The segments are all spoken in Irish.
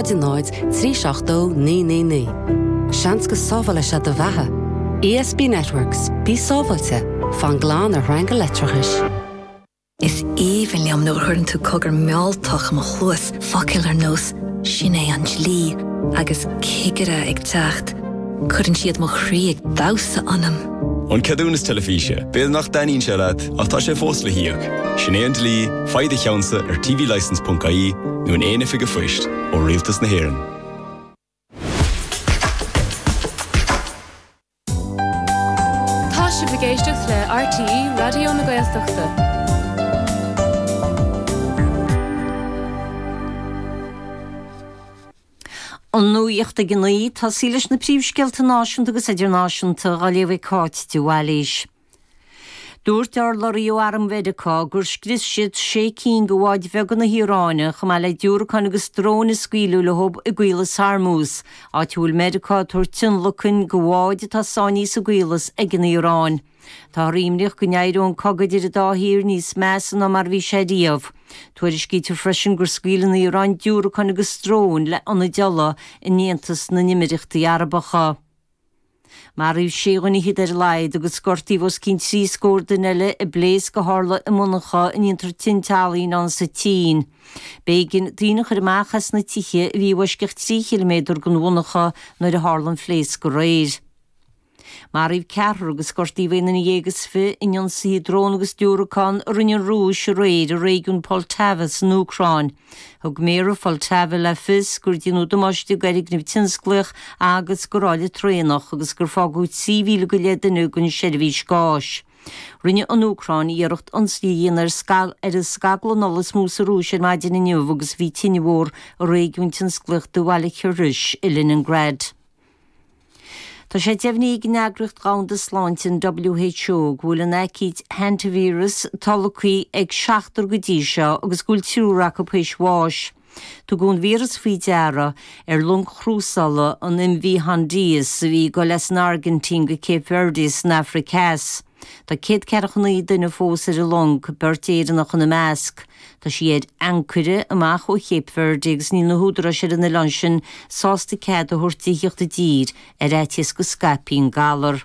0 3 7 2 9 9 9 Seans go sábhálfadh sé do bheatha. ESB Networks, Bí sábháilte, fan glan ar shreanga leictreachais. Is aoibhinn liom nuair a chuireann tú cogar mealltach i mo chluas, focail ar nós 'Sin é an dlí' agus 'Cigire ag teacht', cuireann siad mo chroí ag damhsa ionam! An Ceadúnas Teilifíse, b'fhéidir nach dtaitníonn sé leat ach tá sé fós le híoc. Sin é an dlí, faigh do cheannsa ar tvlicense.ie nó in aon oifig an phoist ó Rialtas na hÉireann. Tá sibh ag éisteacht le RTÉ Raidió na Gaeltachta. An nuacht ag a naoi, tosaí leis na príomhscéalta náisiúnta agus idirnáisiúnta, á léamh ag Cáit de Bhailís. Dúirt urlabhraí ó arm Mheiriceá gur scrios siad sé cinn de bháid bheaga na hIaráine, chomh maith le diúracáin agus dróin a scaoileadh leo i gCaolas Hormuz, áit a bhfuil Meiriceá ag tabhairt tionlacan do bháid atá sáinnithe sa gCaolas ag an Iaráin. Táthar imníoch go n-éireodh an cogadh idir an dá thír níos measa ná mar a bhí sé riamh. Tuairiscítear freisin gur scaoil an Iaráin diúracáin agus dróin le hionad ola in Aontas na nÉimíríochtaí Arabacha. Maraíodh sé dhuine fichead ar a laghad agus gortaíodh os cionn trí scór duine eile i bpléasc a tharla i monarcha ina ndéantar tinte ealaíne insa tSín. B'éigin daoine a chur amach as na tithe a bhí i bhfoisceacht trí chiliméadar den mhonarcha nuair a tharla an phléasc aréir. Maraíodh ceathrar agus gortaíodh aon duine dhéag is fiche in ionsaithe dróin agus diúracán a rinne an Rúis aréir i réigiún Poltava san Úcráin. Thug méara Pholtava le fios gur deineadh damáiste d'fhoirgneamh tionsclaíoch agus do ráille traenach agus gur fágadh 3,000 go leith duine gan seirbhís gáis. Rinne an Úcráin iarracht ionsaí a dhéanamh ar an scaglann ola is mó sa Rúis ar maidin inniu agus bhí tine mhór i réigiún tionsclaíoch de bhaile Kirishi i Leningrad. Tá sé deimhnithe ag an Eagraíocht Dhomhanda Sláinte, an WHO, go bhfuil an aicíd Hantavirus tolgtha ag seachtar go dtí seo agus go bhfuil triúr acu théis bháis. Tugadh an víreas faoi deara ar long chrúsála, an MV Hondius, a bhí ag dul as an Airgintín go Cape Verde san Afraic theas. Tá céad ceathracha naoi duine fós ar an long, beirt Éireannach ina measc. Tá sí ar ancaire amach ó Chape Verde agus níl na húdaráis ar an oileán sin sásta cead a thabhairt di thíocht i dtír, ar fhaitíos go scaipfí an galar.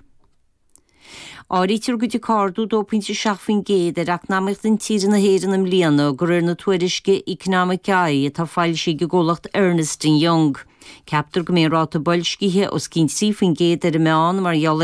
Áirítear go dtiocfaidh ardú 2.7% ar eacnamaíocht intíre na hÉireann i mbliana, de réir na tuairisce Economic Eye atá foilsithe ag an gcomhlacht Ernst and Young. Ceaptar go mbeidh an ráta boilscithe os cionn 3% ar an meán mar gheall